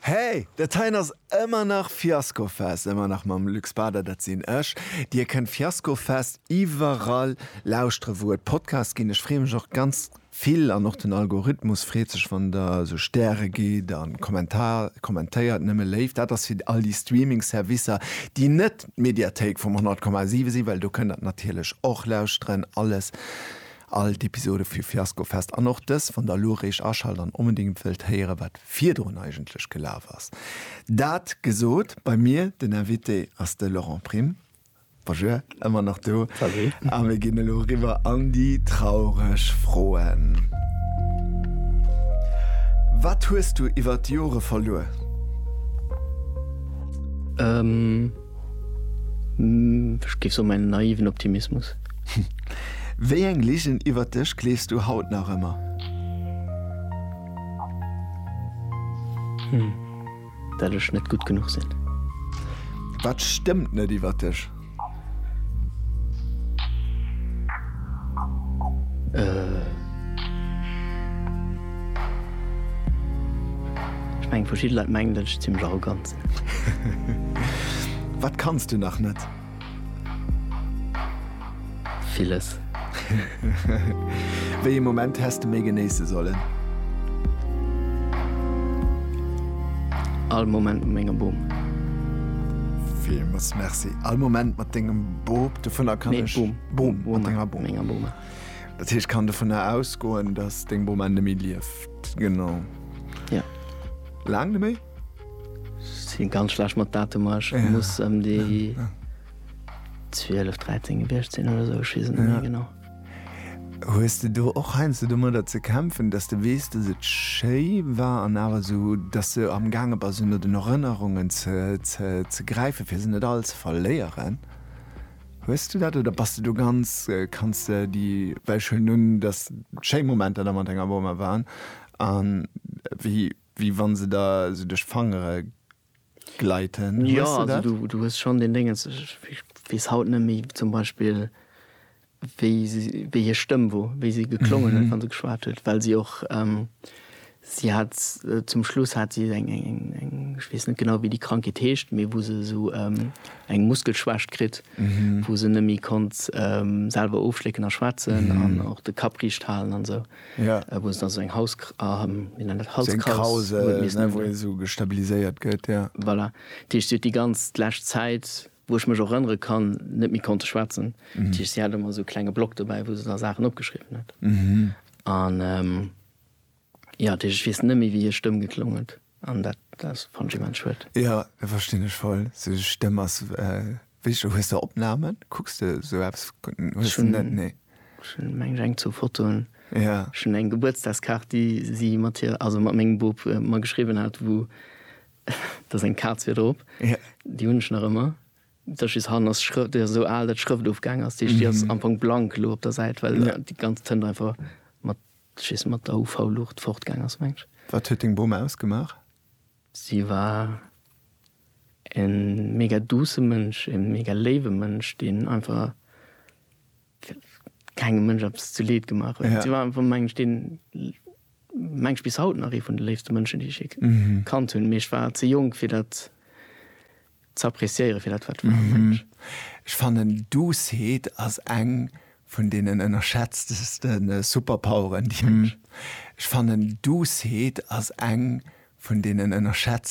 Hey, dat heien ass ëmmer nach Fiaskofest, ëmmer nach mam Luc Spader, dat sinn ech. Dir kënnt Fiaskofest iwwerall lauschtere wou et Podcasts ginn. Ech freeë mech och ganz vill an och den Algorithmus freet sech wann der esou Stäre gitt a Kommentar kommentéiert. Nëmme Léift, dat ass fir all déi Streaming Servicer déi net d'Mediathéik vum 100,7 sinn, well do kënnt der et natierlech och lauschteren. Alles All d'Episode vu Fiasko Fest an och dës wann der elo eréischt aschalt an onbedéngt wëllt héieren wat virdrun eigentlech gelaf ass. Dat gesot, bei mir den Invité ass de Laurent Prim. Bonjour, ëmmer nach do. Salut. A mir ginn elo eriwwer an déi traureg Froen. Wat hues du iwwert d'Jore verluer? Ech géif soen, en naiven Optimismus. Wéi eng Ligen iwwert dech gleefs du haut nach ëmmer? Dat ech net gutt genuch sinn. Wat stëmmt net iwwert dech? Ech mengen, verschidde Leit mengen, datt ech zimmlech arrogant sinn. Wat kanns du nach net? Villes. Wéi ee Moment häss de méi genéisse sollen? All Moment mat mengem Bum. Villmools Merci. All Moment mat dengem Bop, dovunner kann ech. Nee, Bum. Bum, mat denger Bum. Mat menger Bum. Dat heescht, ech kann dovunner ausgoen, dass deng Bum ennemie lieft. Genau. Ja. Laang neméi? Sin ganz schlecht mat Datumer, ech muss em déi 12, 13 gewiecht sin oder esou, ech wees et net méi genau. Hues de do och heiansdo domadder ze kämpfen, dass de weess, dass et schéi war an awer esou, dass de am gaange bass un den Erënnerungen ze gräifen, fir se net all ze verléieren? Hues du dat oder bass de do ganz, kanns de déi, well ech huelen un, dass schéi Momenter da mat denger Boma waren an wéi, Wéi wann se der sou duerch d'Fangere gleiten. Jo, also du, du hues schonn deen Déngens, ech weess haut net méi zum Beispill, wéi se, wéi hir Stëmm wor, wéi se geklongen huet, wa se geschwat huet, well si och, si hat zum Schluss hat si eng, eng, eng, eng, ech weess net genau, wéi déi Krankheet heescht, mee wou se esou eng Muskelschwächt kritt, wou se net méi konnt selwer ofschlécken a schwätzen an och de Kapp riicht halen an esou. Ja. Äh, wou se dann esou eng Haus, ah, hm, wéi nennt dat, Halskrauss. Sou eng Krause, huet missen ne, hunn, wou ja. ee sou gestabiliséiert gëtt, ja. Voilà. Dat heescht, si huet déi ganz d'lescht Zäit, wou ech mech och erënnere kann, net méi konnte schwätzen. Dat heescht, si hat ëmmer esou e klenge Block dobäi, wou se da Saachen opgeschriwwen huet. An, ähm, jo, dat heescht, ech weess net méi, wéi hir Stëmm geklong huet. An dat ass fand ech immens schued. Jo, dat verstinn ech voll. Sou Stëmm ass wéi, hues de Opnamen? Kucks de sou eppes? Hues de net? Nee. Ech hunn meng ech eng zwou Fotoen. Jo. Ech hunn eng Gebuertsdagskaart déi si mat hir, also mat mengem Bub mer geschriwwen hat wou da seng Kaz wier drop. Jo. Déi hunn ech nach ëmmer. Dat ass just hannen ass d'Schrë, déi ass esou al dat d'Schrëft ofgaang ass. Déi ass am Fong blank elo op der Säit well déi ganz Tënt einfach mat Ech wees mat der UV Lucht fort gaang ass mengs. Wat huet deng Bom ausgemaach? Si war en mega douce Mënsch, en mega léiwe Mënsch, deen einfach kengem Mënsch eppes zu Leed gemaach huet. Si war einfach mengen ech deen, mengen ech bis haut nach ee vun de léifste Mënschen déi ech jee kannt hunn, mee ech war ze jonk fir dat ze appreciéieren fir dat wat war. Mensch. Ech fannen Doucet ass eng vun deenen ënnerschätzteste Superpoweren déi. Mensch. Ech fannen Doucet ass eng vun deenen ënnerschätzteste.